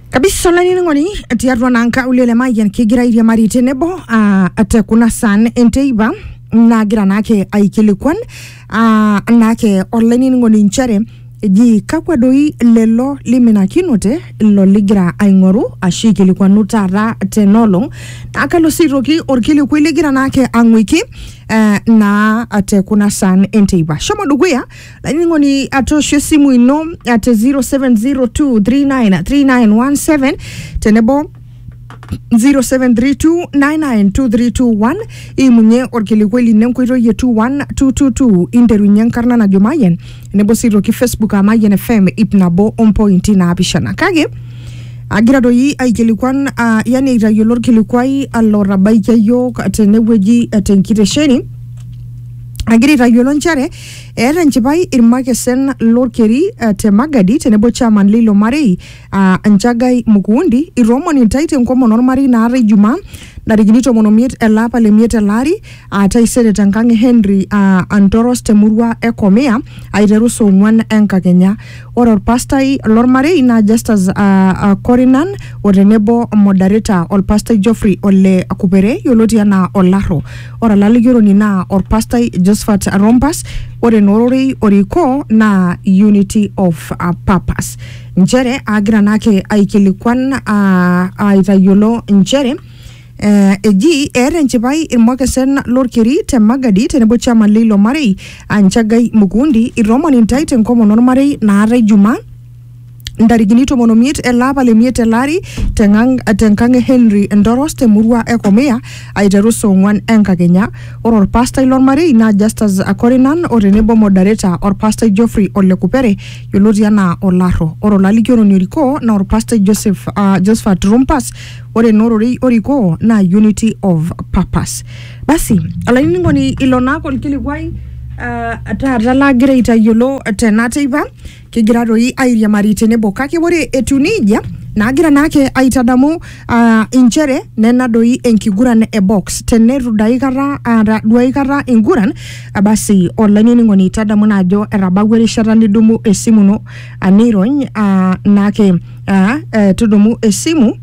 kabisa olainining'oni tiatua naa nkaulele le mayian kigira airiamari tenebo ah, te kuna san enteipa nagira naake aikilikuan ah, naake olainining'oni inchere eji kakwa doi lelo liminakinote ilo ligira aing'oru ashu aikilikuanu taata tenolong naa kalo sii aitoki orkilikuai ligira naake ang'uiki eh, naa te kuna san enteipa shomo dukuya laining'oni atoosho esimu ino ate 0702393917 tenebo 0732992321 imunye orkilikuai lino enkoitoi e 21222 interunye enkarna najo mayian tenebo sii toki facebook aa mayian fm ip nabo ompointi naapishana kake agira doi aikilikuan uh, yani aitayiolo orkilikuai alotabaikia yiok tenewueji eh, tenkitesheni agira aitayiolo nchere Eeta enchipai irmakesen lorkeri eh, te Magadi tenebo chairman leilo marei ah, Nchagai Mukuundi itoomoni intae tenkomono ormarei naata Ijumaa ntarikini tomon omiet ele apa le miet ele ari ah, taisere tenkang e Henry ah, Antoros temurua e Komia aiteru saa ong'uan enkakenya. Ore olpastai lolmarei naa Justus uh, Korinan o tenebo modereta olpastai Geoffrey Ole Kupere yioloti anaa Olaro. Ore olalikioroni naa olpastai Josephat Rompas. Ore naa ororei orikoo naa Unity of uh, Purpose. Nchere agira naake aikilikuan uh, aitayiolo nchere Eh, eji eeta enchipai irmokesen lorkeri te Magadi tenebo chairman leilo marei aa Nchagai Mukundi itoomon intae tenkomono ormarei naatae Jumaa ntarikini tomon omiet ele apa le miet ele ari tengang- tenkang e Henry Ndoros temurua e Komia aiteru saa ong'wan enkakenya. Ore orpastai lormarei naa Justus Akorinan o tenebo modereta orpastai Geoffrey Ole Kupere yioloti anaa Olarro. Ore olalikioroni orikoo naa orpastai Joseph, uh, Josephat Rumpas ore naa ororei orikoo naa unity of purpose basi olainining'oni ilo naake olkilikuai ah, taata lagira aitayiolo tena teipa kigira doi airiamari tenebo kake ore etiu nejia naagira naake aitadamu ah, inchere nena doi enkiguran e box teneitu dai kata aata duai kata inguran ah, basi olainining'oni tadamu naa ajo etabawua erishata nidumu esimu ino ah, nirony ah, naake aa eh, tudumu esimu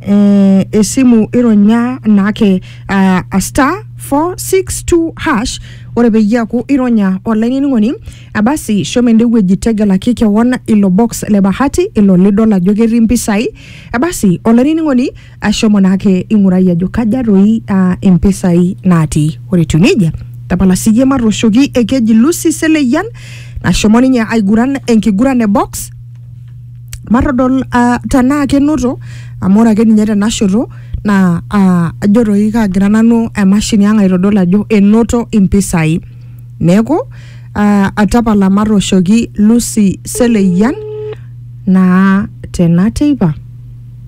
eh, esimu ironya naake ah, a star 462 hash ore peyie eaku ironya olainining'oni ah, basi shomo ende wueji tegelaki kewon ilo box le bahati ilo lidol ajo ketii mpisai ah, basi olainining'oni ashomo naake ing'urai ajo kaja toi uh, impisai natii ore etiu nejia tapala siyie matooshoki ekeji Lucy Seleyian nashomo ninye aiguran enkiguran e box matodol uh, tenaa kenoto amu ore ake ninye tenashoto naa uh, ajo toi kaagira nanu emashini ang aitodol ajo enoto impisai neeku uh, atapala matooshoki Lucy Seleyian naa tena teipa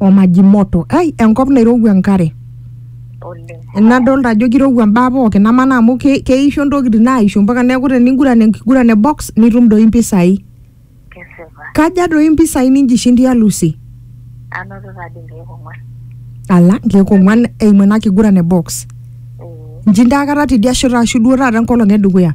o maji moto ai enkop nairowua enkare oleng nadolta ajo kirowua mbaa pookin amaa amu ke- keisho ntokitin naaisho mpaka neeku teninguran enkiguran e box nitum doi mpisai kesipa kaja doi mpisai ninjishindia Lucy anoto tadi nkeek ong'uan ala nkeek ong'uan eimu ena kiguran e box ee njinda akata tidia shoto ashu duo taata enkolong edukuya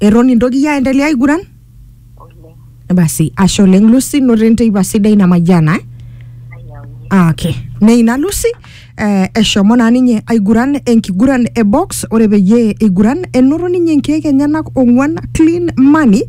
eton intoki aendelea aiguran oleng basi ashe oleng lucy noto enteipa sidai namayiana eh? nayaunye Ah, okay. Neina Lucy eh, eshomo naa ninye aiguran enkiguran e box ore peyie eiguran enoto ninye nkeek enyenak ong'uan clean money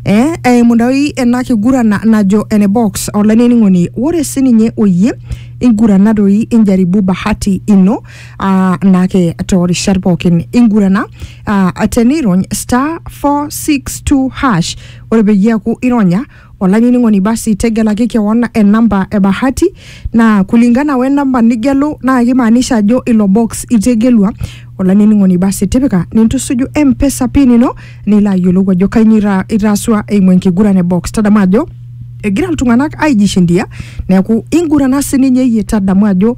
eh, eimu doi ena kiguran na- najo ene box olainining'oni ore sininye oyie ingurana doi injaribu bahati ino ah, naake toorishat pookin ingurana uh, tenirony star 462 hash ore peyie eaku ironya olainining'oni basi tegelaki kewon enamba e bahati naa kulingana we namba nigelu naa kimaanisha ajo ilo box itegelua olainining'oni basi tipika nintusuju mpesa pin ino nilo ayiolou ajo kainyoo ita- itaasua eimu enkiguran e box tadamu ajo egira iltung'anak aijishindia neeku ingurana sininye iyie tadamu ajo